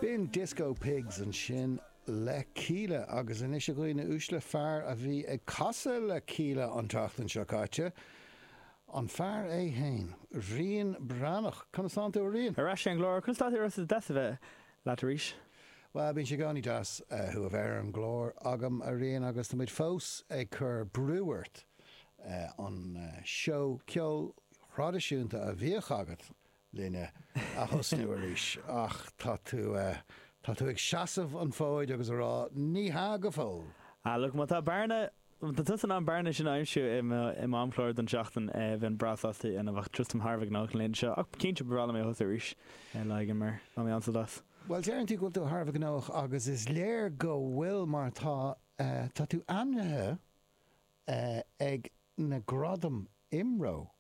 B'in Disco Pigs ansin le Kíla agus anois a dhaoine uaisle, fear a bhí ag casadh le Kíla an tseachtain seo caite, an fear é féin, Rian Breathnach. Conas tánn tú, a Rian? Ar ais ar an gclár. Conas atá tú arís? Is deas a bheith leat arís. Bhuel, bíonn sé i gcónaí deas thú a bheith ar an gclár agam, a Rian, agus tá muid fós ag cur brú ort an seó ceoil thraidisiúnta a bhíodh agat linne a thosnú arís. Ach tá tú, tá tú ag seasamh an fóid agus ag rá, Ní hea go fóill! Ah, look, má tá bearna, má tá tusa in ann bearna sin a aimsiú i mo, i m'amchlár don tseachtain, eh, bheinn breá sásta é a dhéanamh ach just táim thar a bheith gnóthach na laethanta seo. Ach cinnte, ba bhreá liom é a thosú arís, eh, lá éigin mar bhain mé an-sult as. Bhuel, deireann tú go bhfuil tú thar a bheith gnóthach agus is léir go bhfuil mar tá, eh, tá tú ainmnithe, ag na gradaim IMRO.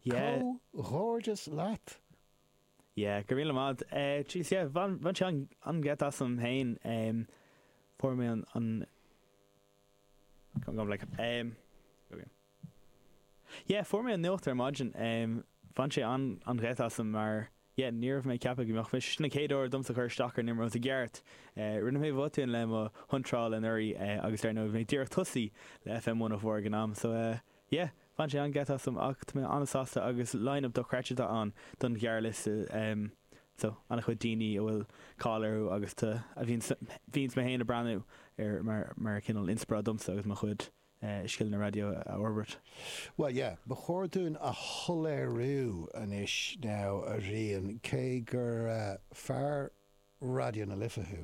Comhghairdeas leat! Yeah, go raibh míle maith agat. Jeez, yeah, bhain bhain sé an-gheit asam féin. Fuair mé an an comhghairdeas leat. Go míle. Yeah, fuair mé an nuacht ar maidin. Bhain sé an-gheit asam mar yeah ní raibh mé ag ceapadh go mbeadh mise sin an chéad uair domsa cur isteach ar na IMROs i gceart. rinne mé botún le mo hiontráil anuraidh agus dar ndóigh bhí mé díreach tosaithe le FM one oh four ag an am so yeah bhain sé an-gheit asam ach tá mé an-sásta agus line-up dochreidte atá ann don ghearrliosta so an-chuid daoine a bhfuil cáil orthu agus tá a bhíonn bhíonn mé féin ag breathnú ar mar mar cineál inspioráid domsa agus mo chuid a scileanna raidió a fhorbairt. Bhuel, yeah. Ba chóir dúinn a shoiléiriú anois now, a Rian, cé gur fear Raidió na Life thú,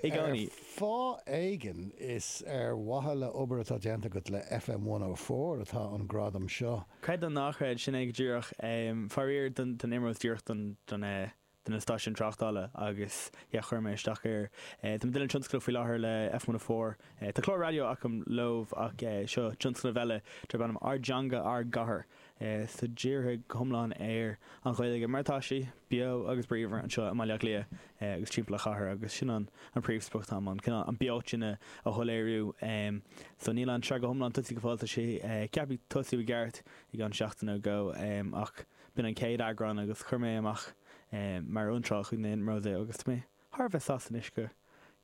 I gcónaí. ar fáth éigin, is ar mhaithe le obair atá déanta agat le FM One O Four atá an gradam seo. Creid nó ná creid, sin é go díreach. Faraor, tá na IMROs, díreach don. do na stáisiúin tráchtála agus, yeah, chuir mé isteach air. Tá mé ag dul an tionscnamh faoi láthair le FM one O Four. Tá clár raidió agam leo ach seo tionscnamh eile darb ainm Ár dTeanga, Ár gCathair. atá dírithe go hiomlán ar an Ghaeilge mar atá sí, beo agus bríomhar anseo i mBaile Átha Cliath agus timpeall an chathair agus sin an príomhsprioc atá ann, cineál an beocht sin a shoiléiriú. So níl an tsraith go hiomlán tosaithe go fóill, tá sé ceaptha tosú i gceart i gceann seachtain nó dhó ach. B'in an chéad eagrán agus chuir mé amach mar iontráil chuig na IMROs é agus tá mé thar a bheith sásta anois go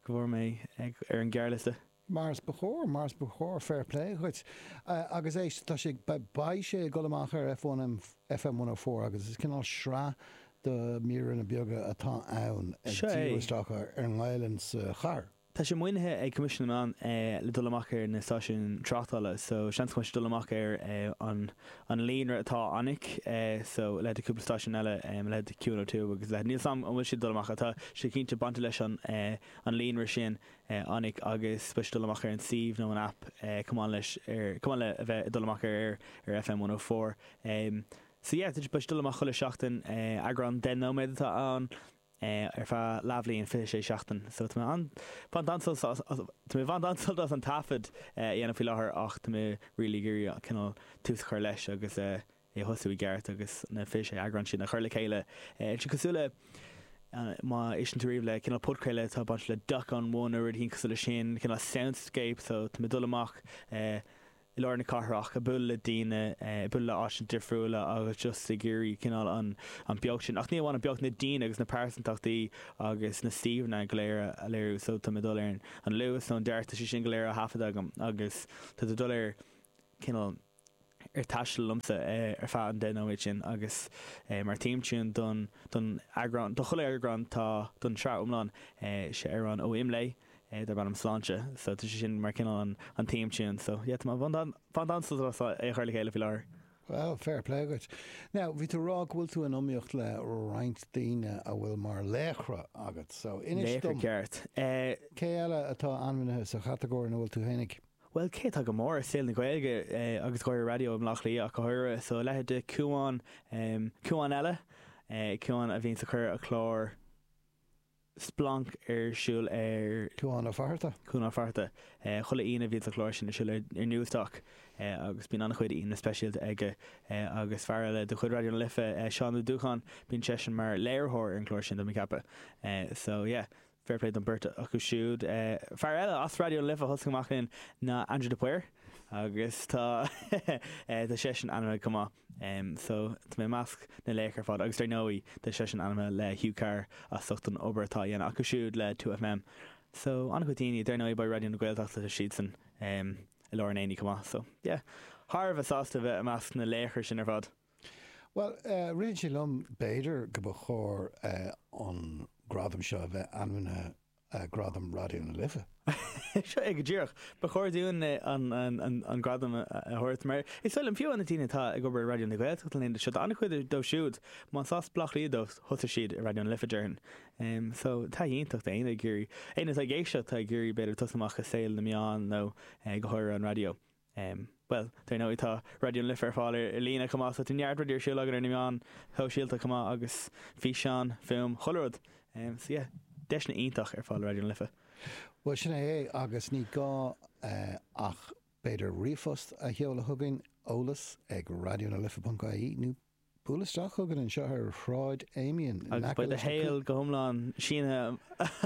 bhfuair mé ar an ghearrliosta. Mar is ba chóir, mar is ba chóir, fair play dhuit. Agus éist, tá sé, beidh sé ag dul amach ar FM, FM One Oh Four agus is cineál sraith de míreanna beaga atá ann ag díriú isteach ar an nGaelainn sa chathair. Tá sé maoinithe ag Coimisiún na Meán le dul amach ar na stáisiúin tráchtála so seans go mbeidh sé ag dul amach ar an líonra atá Onic so leithéid de cúpla stáisiún eile leithéid de Q102 agus leithéid. Níl fhios 'am an bhfuil siad ag dul amach ach tá sé cinnte bainte leis an líonra sin Onic agus beidh sé ag dul amach ar an suíomh nó an app chomh maith leis ar chomh maith le a bheith ag dul amach ar aer ar FM One Oh Four so yeah beidh sé ag dul amach chuile seachtain eagrán deich nóiméad atá ann. é ar feadh leathbhliain, fiche sé seachtain, so tá mé ag baint an-sult as, tá mé ag baint an-sult as an taifead a dhéanamh faoi láthair ach tá mé really ag iarraidh cineál tús a chur leis agus é a thosú i gceart agus na fiche sé eagrán sin a chur le chéile. Is é sin cosúil le, má éisteann tú riamh le cineál podchraoladh atá ag baint le Doc on One nó ruidín cosúil le sin, cineál soundscape, so tá mé ag dul amach eh, i lár na cathrach, ag bualadh le daoine, ag bualadh le áiteanna difriúla agus just ag iarraidh cineál an beocht sin, ach ní amháin an beocht, na daoine agus na pearsantachtaí agus na suíomhanna go léir a léiriú. So tá mé ag dul ar an Luas nó an DART, tá sé sin go léir á thaifead agam agus tá tú ag dul ar cineál ar taisteal liomsa ar feadh an deich nóiméad sin agus mar theme tune don eagrán, do chuile eagrán tá, don tsraith iomlán, sé amhrán ó Imlé, é darb ainm Sláinte so tá sé sin mar cineál an theme tune so yeah tá mé ag baint an-sult as é a chur le chéile faoi láthair. Well, fair play dhuit. Now, bhí tú rá go bhfuil tú in iomaíocht le roinnt daoine a bhfuil mar laochra agat, so inis Laochra dom, ceart. Eh, cé eile atá ainmnithe sa chatagóir ina bhfuil tú fhéinig? Bhuel, cé tá go mór i saol na Gaeilge eh, agus go háirithe raidió i mBleá Cliath ach go háirithe, so a leithéid de Cuán, em, Cuán eile, eh, Cuán a bhíonn ag cur a chlár, Splanc ar siúl ar. Cuán Ó Flatharta. Cuán Ó Flatharta. Chuile Aoine bíonn an clár sin ar siúl ar Newstalk agus bíonn an-chuid aíonna speisialta aige agus fear eile de chuid Raidió na Life, Seán Ó Dubhcháin, bíonn seisean mar léiritheoir ar an gclár sin do mo cheapadh. So yeah, fair play don beirt acu siúd. Fear eile as Raidió na Life a thosaigh amach linn ná Andrew de Paor agus tá seisean ainmnithe chomh maith. so tá mé i measc na laoch ar fad agus ar ndóigh tá seisean ainmnithe le Hugh Carr as ucht an obair atá a dhéanamh acu siúd le 2FM so an-chuid daoine dar ndóigh beidh Raidió na Gaeltachta tá siadsan i lár an aonaigh chomh maith so yeah thar a bheith sásta bheith i measc na laochra sin ar fad. Bhuel, ritheann sé liom b'fhéidir go ba chóir an gradam seo a bheith ainmnithe Gradam Raidió na Life. Seo é go díreach. Ba chóir dúinn an gradam a thabhairt mar is dóigh liom fiú na daoine atá ag obair i Raidió na Gaeltachta na laethanta seo, tá an-chuid dóibh siúd, más as Bleá Cliath dóibh, thosaigh siad i Raidió na Life déarfainn. So tá sé iontach d'éinne ag iarraidh, éinne atá ag éisteacht atá ag iarraidh b'fhéidir tosnú amach i saol na meán nó go háirithe an raidió. em bhuel dar ndóigh tá Raidió na Life ar fáil ar líne chomh maith so tá neart rudaí ar siúl againn ar na meáin shóisialta chomh maith agus físeáin, fuaim, chuile rud. em so yeah deiseanna iontach ar fáil le Raidió na Life. Bhuel sin é é agus ní gá eh ach b'fhéidir ríomhphost a sheoladh chugainn, eolas ag raidiónalife ponc ie nó. Buail isteach chugainn anseo ar Shráid Amiens agus beidh do shaol go hiomlán sínithe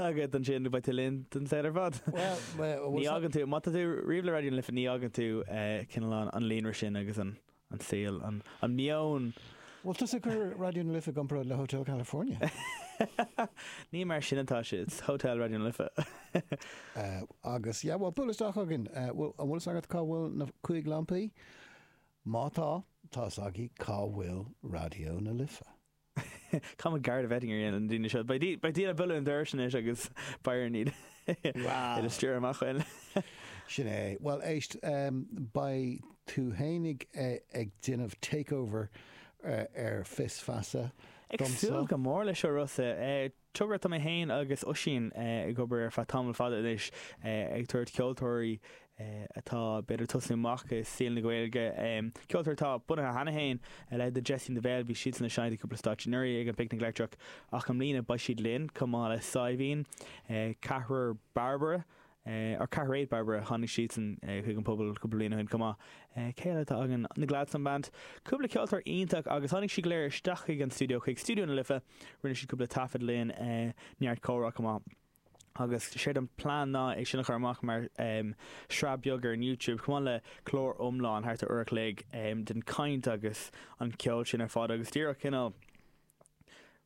agat ansin, nó beidh tú linn don saol ar fad. Bhuel, ní fhágann tú, má tá tú riamh le Raidió na Life, ní fhágann tú cineál an an líonra sin agus an an saol, an an meon. Bhuel, tusa ag cur Raidió na Life i gcomparáid le Hotel California. Ní mar sin atá sé, it's Hotel Raidió na Life. Agus, yeah, bhuel, buail isteach chugainn. Bhuel, an bhfuil fhios agat cá bhfuil na Cúig Lampa? Má tá, tá's agaibh cá bhfuil Raidió na Life? Cé mb'fhearr a bheith ag na daoine seo? Beidh tú i mbéal an dorais anois agus beidh tú in ann iad a stiúradh amach uainn. Sin é. Bhuel éist, beidh tú féin ag déanamh takeover ar Fios Feasa domsa. Ag súil go mór le seo Rossa. Togra atá mé féin agus Oisín ag obair air ar feadh tamall fada anois ag tabhairt ceoltóirí atá, b'fhéidir, ag tosnú amach i saol na Gaeilge, ceoltóirí atá bunaithe cheana féin, a leithéid de Jessie and the Veil, bhí siadsan ag seinnt ar chúpla stáitse anuraidh ag an bPicnic Leictreach ach i mbliana beidh siad linn, chomh maith le Saidhbhín, ceathrar Barbara, Nó ceathairéad Barbara tháinig siadsan chuig an bpuball cúpla bliain ó shin chomh maith. Cé eile atá againn? Na Gladstone Band. Cúpla ceoltóir iontach agus tháinig siad go léir isteach chuig an stiúideo, chuig Stiúideo na Life, rinne siad cúpla taifead linn, neart comhrá chomh maith. Agus séard an plean ná é sin a chur amach mar sraith beag ar an YouTube chomh maith le clár iomlán, thart ar uair a chloig, den chaint agus an ceol sin ar fad agus díreach cineál,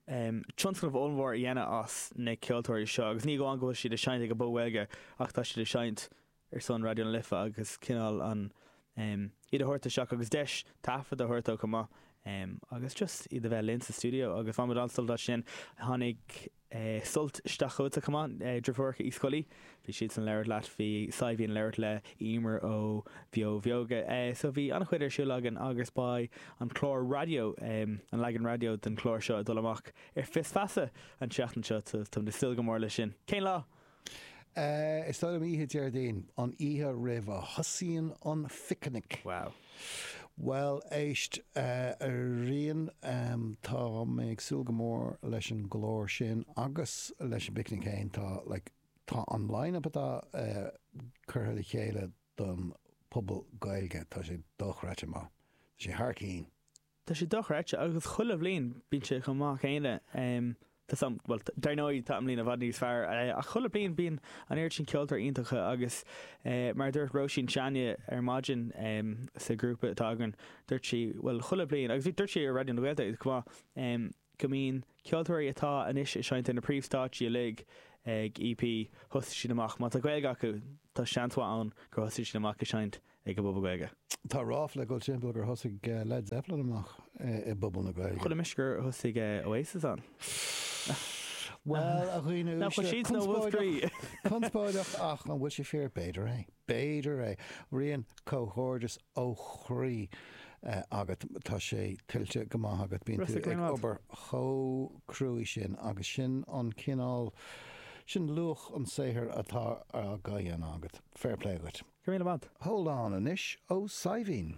tionscnamh ollmhór a dhéanamh as na ceoltóirí seo agus ní amháin go bhfuil siad ag seinnt ag an bPuball Gaeilge ach tá siad ag seinnt ar son Raidió na Life agus cineál an iad a thabhairt isteach agus deis taifead a thabhairt dóibh chomh maith agus just iad a bheith linn sa stiúideo agus bhaineamar an-sult as sin. Tháinig. Sult isteach chugatsa chomh maith! Deirfiúracha Uí Scolaí, bhí siadsan ag labhairt leat, bhí Saidhbhín ag labhairt le Emma ó Bheo Bheoga, so bhí an-chuid ar siúl againn agus beidh an clár raidió, an leagan raidió den chlár seo ag dul amach ar Fios Feasa an tseachtain seo, so táimid ag súil go mór leis sin. Cén lá? Is dóigh liom oíche Déardaoin, an oíche roimh a thosaíonn an phicnic. Wow. Bhuel, éist, a Riain, tá mé ag súil go mór leis an gclár sin agus leis an bpicnic féin. Tá like, tá an line-up atá curtha le chéile don Phuball Gaeilge, tá sé dochreidte maith. Tá sé thar cinn. Tá sé dochreidte, agus chuile bhliain bíonn sé chomh maith céanna. Tá's a'm, bhuel, dar ndóigh tá an bhliain i bhfad níos fearr, ach chuile bhliain bíonn an oiread sin ceoltóirí iontacha agus mar a dúirt Róisín Seánie ar maidin sa ghrúpa atá againn, dúirt sí, bhuel, chuile bhliain, agus dúirt sí ar Raidió na Gaeltachta chomh maith, go mbíonn ceoltóirí atá anois ag seinnt ar na príomhstáitsí uilig ag EP, thosaigh siad amach, má tá Gaeilge acu, tá seans mhaith ann gur thosaigh siad amach ag seinnt ag an bPuball Gaeilge. Tá ráfla ag dul timpeall gur thosaigh Led Zeppelin amach i bPuball na Gaeilge. Chuala mise gur thosaigh Oasis ann. Bhuel, a dhaoine uaisle, conspóideach ach an bhfuil sé fíor? B'fhéidir é. B'fhéidir é. Rian, comhghairdeas ó chroí agat, tá sé tuillte go maith agat, bíonn tú ag obair chomh cruaidh sin agus sin an cineál, sin luach an saothair atá á dhéanamh agat, fair play dhuit. Go raibh míle maith agat. Slán anois ó Saidhbhín.